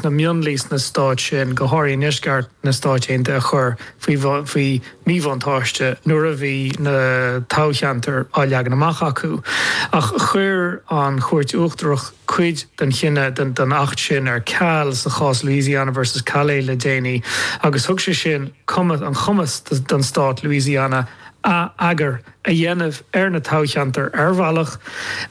na mionlaigh sna stáit sin, go háirithe i ndeisceart na Stáit Aontaithe a chur faoi mhíbhuntáiste nuair a bhí na toghcheantair á leagan amach acu. Ach chuir an Chúirt Uachtarach cuid den chinneadh den Acht sin ar ceal sa chás Louisiana versus Callais le déanaí agus thug sé sin cumas an chumas do Stát Louisiana atheagar a dhéanamh ar na toghcheantair ar bhealach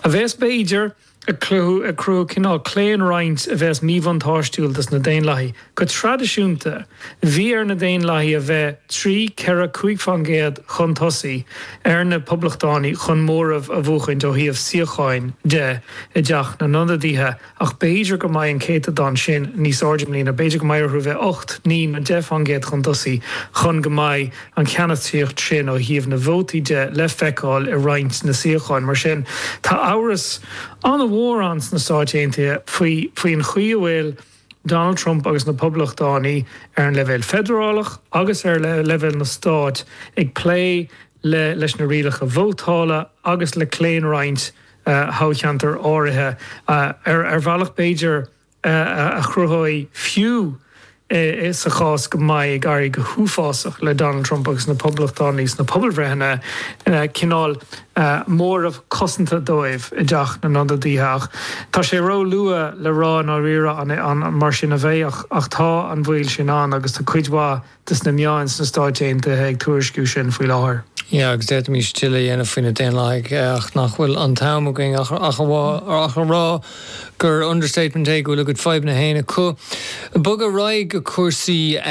a bhéas b'fhéidir ag cruthú cineál claonroinnt a bheas míbhuntáistiúil dos na Daonlathaigh. Go traidisiúnta, bhí ar na Daonlathaigh a bheith trí, ceithre, cúig fán gcéad chun tosaigh ar na Poblachtánaigh chun móramh a bhuachaint ó thaobh suíocháin de i dTeach na nIonadaithe ach b'fhéidir go mbeidh an céatadán sin níos airde i mbliana, b'fhéidir go mbeidh orthu a bheith ocht, naoi nó deich fán gcéad chun tosaigh chun go mbeidh. an cheannasaíocht sin ó thaobh na vótaí de le feiceáil i roinnt na suíocháin. Mar sin, tá amhras an-mhór ann sna Stáit Aontaithe faoi faoin chaoi a bhfuil Donald Trump agus na Poblachtánaigh, ar an leibhéal feidearálach agus ar leibhéal na Stát, ag plé le leis na rialacha vótála agus le claonroinnt thoghcheantar áirithe, ar bhealach b'fhéidir a chruthóidh fiú sa chás go mbeidh ag éirí go huafásach le Donald Trump agus na Poblachtánaigh sna pobalbhreitheanna, cineál móramh cosanta dóibh i dTeach na nIonadaithe. Ach tá sé ró-luath le rá i ndáiríre an mar sin a bheidh, ach tá an baol sin ann agus tá cuid mhaith des na meáin sna Stáit Aontaithe ag tuairisciú sin faoi láthair. Yeah, agus d'fhéadfaimis tuilleadh a dhéanamh faoi na Daonlathaigh, ach nach bhfuil an t-am againn ach a rá gur understatement é go bhfuil a gcuid fadhbanna féin acu. Bog ar aghaidh go cúrsaí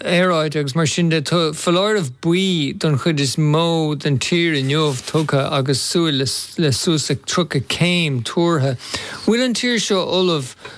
aeráide agus mar sin de. Tá foláireamh buí don chuid is mó den tír inniu tugtha agus súil le suas le 30 céim tuartha. Bhfuil an tír seo ullamh?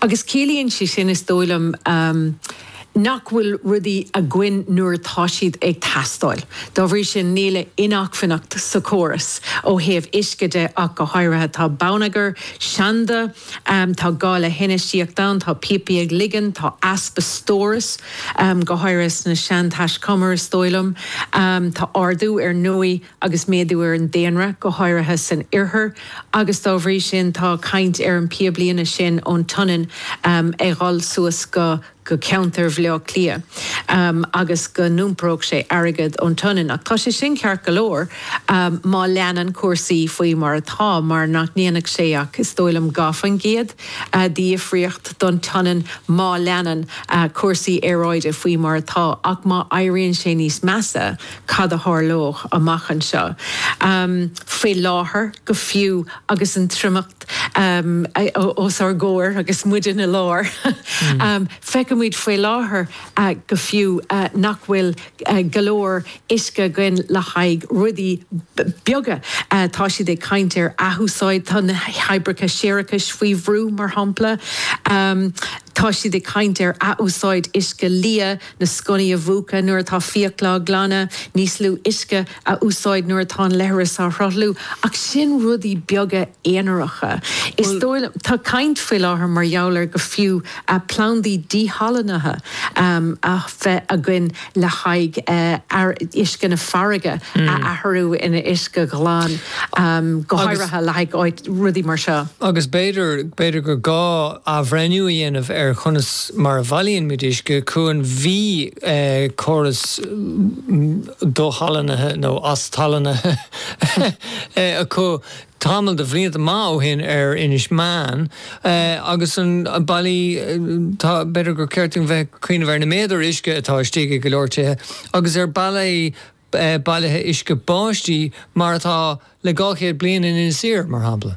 Agus ciallaíonn sé sin, is dóigh liom, nach bhfuil rudaí againn nuair atá siad ag teastáil. Dá bhrí sin, níl aon acmhainneacht sa chóras ó thaobh uisce de ach go háirithe. Tá bonneagar seanda, tá gá le hinfheistíocht ann, tá píopaí ag ligean, tá easpa stórais, go háirithe sna seantaiscumair, is dóigh liom. Tá ardú ar ndóigh. agus méadú ar an daonra, go háirithe san Oirthear, agus dá bhrí sin tá caint ar an píoblíne sin ón tSionainn ag dhul suas go go ceantar Bhaile Átha Cliath agus go n-iomparódh sé airgead ón tSionainn. Ach tá sé sin ceart go leor má leanann cúrsaí faoi mar atá, mar nach ndéanfadh sé ach, is dóigh liom, dhá faoin gcéad difríocht don tSionainn má leanann cúrsaí aeráide faoi mar atá. Ach má éiríonn sé níos measa, cad a tharlóidh amach anseo. Faoi láthair go fiú agus an triomacht os ár gcomhair agus muid ina lár, feiceann muid faoi láthair go fiú nach bhfuil go leor uisce againn le haghaidh rudaí beaga. Tá siad ag caint ar athúsáid, tá na hoibreacha séarachais faoi bhrú mar shampla. Tá siad ag caint ar athúsáid uisce liath. Na sconnaí a mhúchadh nuair atá fiacla á glanadh, níos lú uisce a úsáid nuair atá an leithreas á shruthlú, ach sin rudaí beaga aonaracha, is dóigh liom. Tá caint faoi láthair mar gheall ar go fiú plandaí díshalannaithe a bheith againn le haghaidh uisce na farraige a athrú ina uisce ghlan. go háirithe le haghaidh rudaí mar seo. Agus b'fhéidir, b'fhéidir gur gá athbhreithniú a dhéanamh ar chonas mar a bhailíonn muid uisce chugainn. Bhí córas díshalannaithe nó as-salannaithe acu tamall de bhlianta maith ó shin ar Inis Meáin agus ar bhealaí, tá, b'fhéidir gur cheart dúinn bheith ag cuimhneamh ar na méadair uisce atá istigh i go leor tithe agus ar bealaí, bailithe uisce báistí mar atá le dhá chéad bliain in Inis Oírr, mar shampla.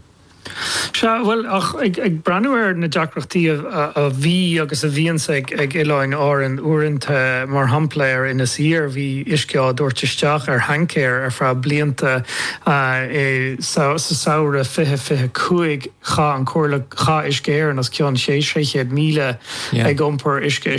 Sea, bhuel, ach ag breathnú ar na deacrachtaí a bhí agus a bhíonns ag Oileáin Árann uaireanta, mar shampla ar Inis Oírr, bhí uisce á tabhairt isteach ar thaincéir ar feadh blianta. Sa samhradh fiche fiche cúig, chaith an Comhairle, chaith Uisce Éireann os cionn sé chéad míle ag iompar uisce isteach.